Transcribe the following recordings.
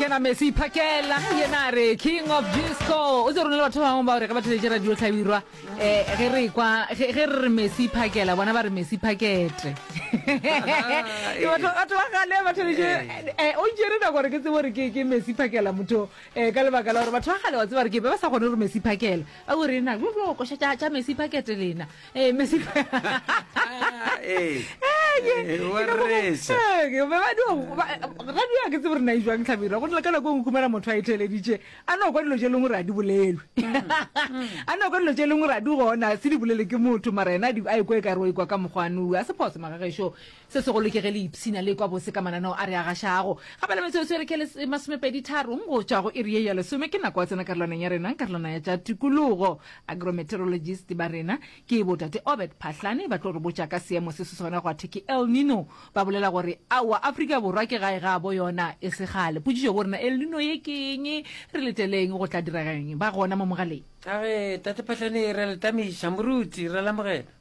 kena mesi iphakela yena re king of disco o tse rona le batho ba bangwe ba gore ge ba theletše radio tlhabirwa um eh, ge re kwa ge re re mesi iphakela bona ba re mesi pakete ke batho batho ba gale ba theletše um eh. eh, o ntšere nako gore ke tsebo gore ke ke mesi iphakela motho um ka lebaka la gore batho ba gale wa tseba gore ke be ba sa kgone gore mesi iphakela ba gore ena koša tša mesi pakete lena Ee, Messi. Ee. Ee, wa reša. Ee, ke ba ba di go- ba- radio a ke tsebe re na e jwang tlhabira go na le ka nako e nngwe khumela motho a e theleditše a no kwa dilo tše lengwe re a di bolelwe a no kwa dilo tše lengwe re a di gona se di bolele ke motho mara ena a di- a ekwa e kare wa ikwa ka mokgwane a se phoso magagešo Se segolo ke ge le ipshina le ekwa bose ka mananeo a re a gašago. Kgabela metsotso e re ke e masomepeditharong go tšwa go iri ye ya lesome ke nako ya tsena karolwaneng ya rena, karolwana ya tša tikologo. Agrometeorologist ba rena ke botate Obert Phahlane ba tlo re botša ka seemo se se sona gwa thwe ke El Nino. Ba bolela gore aowa Afrika Borwa ke gae ga bo yona e se kgale. Potšišo bo rena El Nino ye ke eng? Re leteleng go tla direga eng? Ba gona mo mogaleng. Age tate Phahlane, re a le tamiša. Moruti, re a le amogela.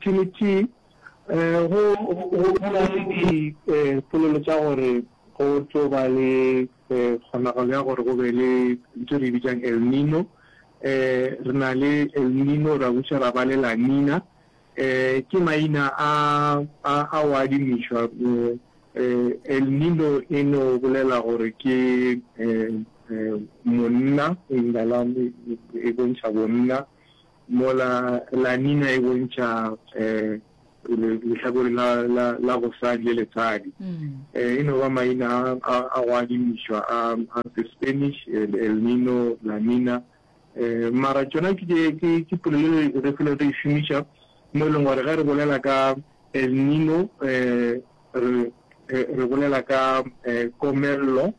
Trinity, go na le dipolelo tša gore go tlo ba le kgonagalo ya gore go be le ntho re bitsang El Nino. Re na le El Nino, ra buša ra ba le La Nina. Ke maina a o adimišwa. El Nino e no bolela gore ke monna, e bontšha bonna. Mola La Nina e bontšha lehlakore la gosadi le letshadi. E no ba maina a go adimišwa a the Spanish, El Nino, La Nina. Mara tšona ke polelo e re felo re e šomiša mo e leng gore ge re bolela ka El Nino re bolela ka komello,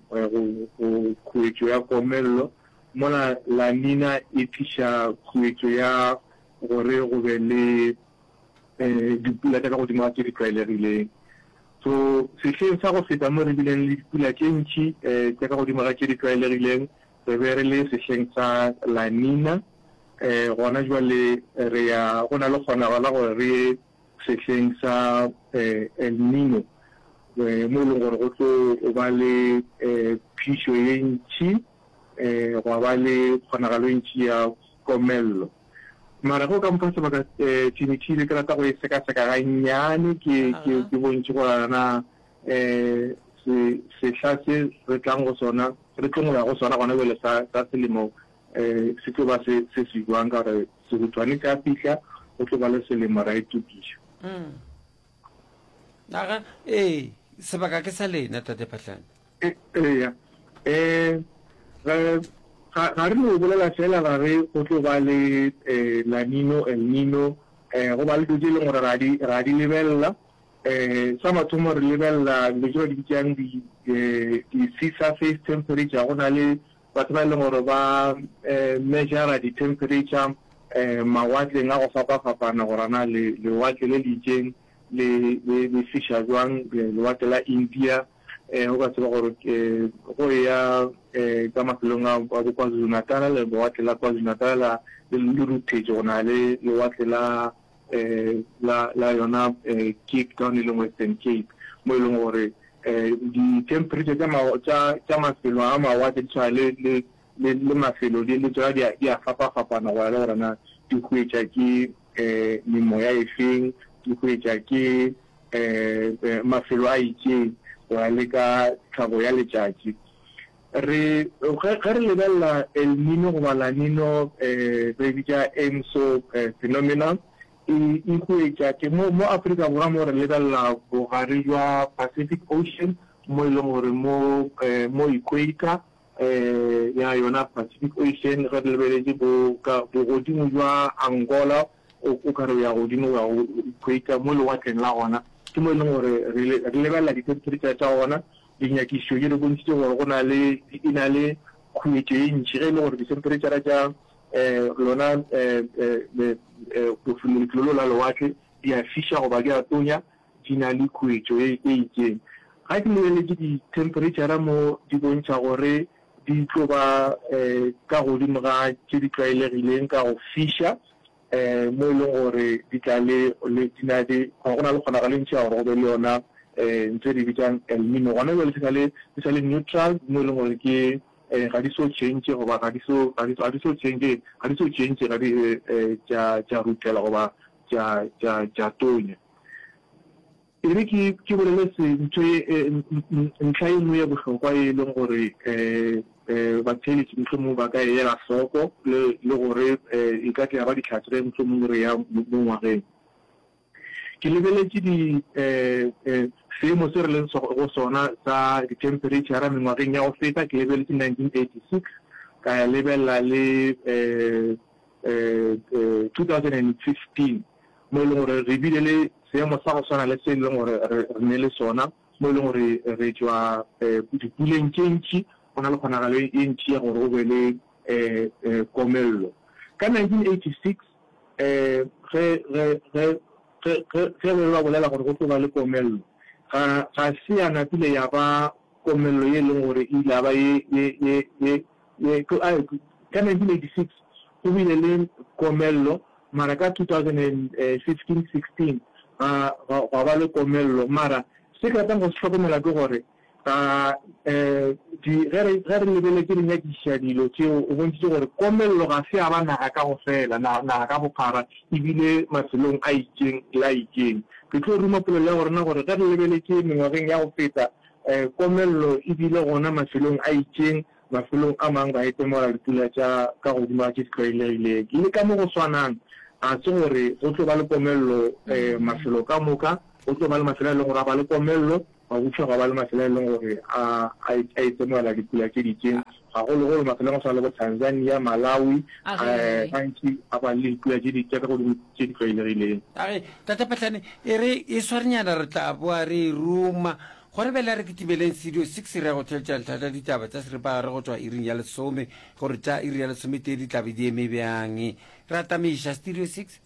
khuetšo ya komello. Mola La Nina e tliša khuetšo ya gore go be le dipula tša ka godimo ga tše di tlwaelegileng. So, sehleng sa go feta mo re bileng le dipula tše ntši tša ka godimo ga tše di tlwaelegileng, re be re le sehleng sa La Nina. Gona bjale re ya, go na le kgonago la gore re ye sehleng sa El Nino, mo e leng gore go tlo ba le phišo ye ntši. Gwa ba le kgonagalo e ntši ya komello. Mara ge o ka mpha sebaka, Thimithimi, ke rata go e sekaseka gannyane ke, ke, ke bontšhe gore a na se, sehla se re tlang go sona, re tlong go ya go sona gona bjale sa, sa selemo se tlo ba se, se se bjang. Ka gore sehutshwane se a fihla, go tlo ba le selemo, ra itokiša. Ee, sebaka ke sa lena, Tate Phahlane. Eya. Ee, ga, ga re no bolela feela ra re go tlo ba le La Nino, El Nino, go ba le dilo tše e leng gore ra di, ra di lebelela. Sa mathomo re lebelela dilo tše ba di bitšang di, di-sea surface temperature, go na le batho ba e leng gore ba measure-a di-temperature mawatleng a go fapa-fapana gore na lewatle le le itšeng le, le, le fisa jwang, lewatle la India, um o ka tseba gore um go ya um ka mafelong a bo KwaZulu-Natal, lewatle la KwaZulu-Natal le ruthetše go na le lewatle la um la la yona um Cape Town e leng Western Cape mo e leng gore um di-temperature tša mafelo a mawatle di tshwana le le le mafelo le tsona di a fapa-fapana go ya le gore na di hwetša ke um memoya e feng, ke hwetša ke um mafelo a itšeng, go ya le ka tlhago ya letšatši. Re, ge, ge re lebelela El Nino goba La Nino, um re e bitša ENSO phenomenon, e, e hwetša ke mo, mo Afrika Borwa mo re lebelela bogare bja Pacific Ocean, mo e leng gore mo, um mo equator, ya yona Pacific Ocean ge re lebeletše bo ka bogodimo jwa Angola o o ka re o ya godimo o ya go equator mo lewatleng la gona ke mo e leng gore re lebelela di-temperature tša gona dinyakišišo di re bontšhitše gore go na le e na le khuetšo e ntšhi ge e le gore di-temperature tša um lona um lefelo la lewatle di a fiša goba di a tonya di na le khuetšo e itseng. Ga ke lebeletse dithemphereitšhara mo di bontšha gore di tlo ba ka godimo ga tše di tlwaelegileng ka go fiša, mo e leng gore di tla le di na le go na le kgonagalo e ntši ya gore go be le yona ntho e re bitsang El Nino. Gona bjale di sa le di sa le neutral mo e leng gore ke ga di so change goba ga di so ga di ga di so change ga di so change ga di tša tša rutela goba tša tša tša tonya. E re ke ke bolele se ntho ye e, ntlha e nngwe ye bohlokwa e leng gore um batheeletši mohlomongwe ba ka e ela hloko le le gore e ka tle ya ba ditlhatse ge mohlomongwe re ya mo ngwageng. Ke lebeletše di um seemo se re leng go sona sa dithempereitšhara mengwageng ya go feta, ke lebeletše nineteen eighty six ka ya lebelela le um two thousand and fifteen. mo e leng gore re bile le seemo sa go swana le se e leng gore re ne le sona, mo e leng gore re tšwa dipuleng tše ntši, go na le kgonagalo e ntši ya gore go be le komello. Ka 1986, ge be ba bolela gore go tlo ba le komello, ga se ya napile ya ba komello ye e leng gore e ile ya ba ye. Ka 1986 go bile le komello. Mara ka 2015-16 ga, ga, gwa ba le komello. Mara se ke ratang go se hlokomela ke gore, ga, um, di, ge re, ge re lebeletše re nyakišiša dilo tšeo, o bontšhitše gore komello ga se ya ba naga ka go fela, na, naga ka bophara, e bile mafelong a itšeng le a itšeng. Ke tlo ruma polelo ya gorena gore ge re lebeletše mengwageng ya go feta, um, komello e bile gona mafelong a itšeng, Mafelong a mang ba etemola dipula tša ka godimo tše di tlwaelegileng. Le ka mo go swanang, ga se gore go tlo ba le komello mafelo ka moka. Go tlo ba le mafelo a e leng gore a ba le komello, gwa butšwa gwa ba le mafelo a e leng gore a a etemoela dipula tše di itseng, gagologolo mafelong a go swana le bo Tanzania, Malawi, gantši a ba le dipula tše di tša ka godimo tše di tlwaelegileng. A re, Tate Phahlane, e re e swarenyana re tla boa re e ruma Gore bjale re kitimeleng Studio Six re ya go theetša ntlha tša ditaba tša seripagare go tšwa iring ya lesome, gore tša iri ya lesometee di tla be di eme bjang. Re atameiša Studio Six.